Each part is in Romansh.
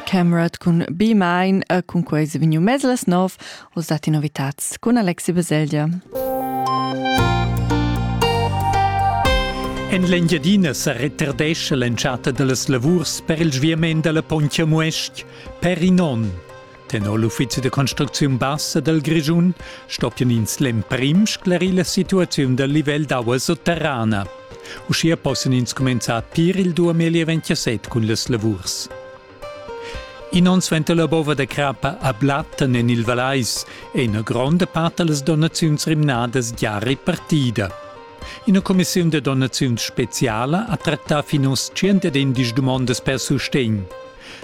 Camerat cun Be Mine e cun quei se vegniu mez las nov, oz datti novitats cun Alexi Baselgia. En l'Engiadina sa retardescha l'entschatta da las lavurs per il sviament da la Pontja Muest per in onn. Tenor l'uffizi da construcziun bassa dal Grischun stoppian ins l'emprim sclarir la situaziun dal livel d'aua sotterrana. Uschia possan ins cumenzar pir il 2027 cun las lavurs. In onn suenter la bova da crappa a Blatten en il Vallais è ina gronda part da las donaziuns rimnadas gia repartida. Ina cumissiun da donaziuns speziala ha trattà fin oz 110 dumondas per sustegn.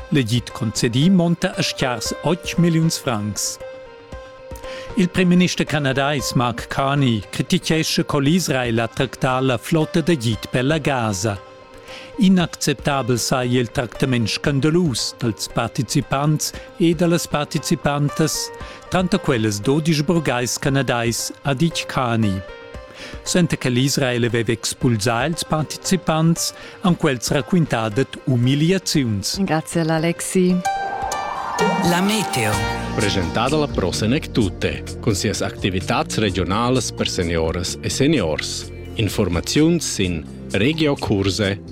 L'edit concedì monta a schiars 8 milliuns francs. Il primminister canadais Mark Carney critichescha co l'Israel ha tractà la flotta d'agid per la Gaza. Inacceptabel saja il tractament scandalus dals participants e da las participantas, tranter quellas dodisch burgais canadais, ha ditg Carney. Suenter che l'Israel aveva expulsà ils participants, han quels raquintà dad umiliaziuns. Grazie all'Alexi. La meteo. Presentada la Pro Senec Tutte, cun sias activitads regionalas per seniores e seniors. Informaziuns sin regiocurse.ch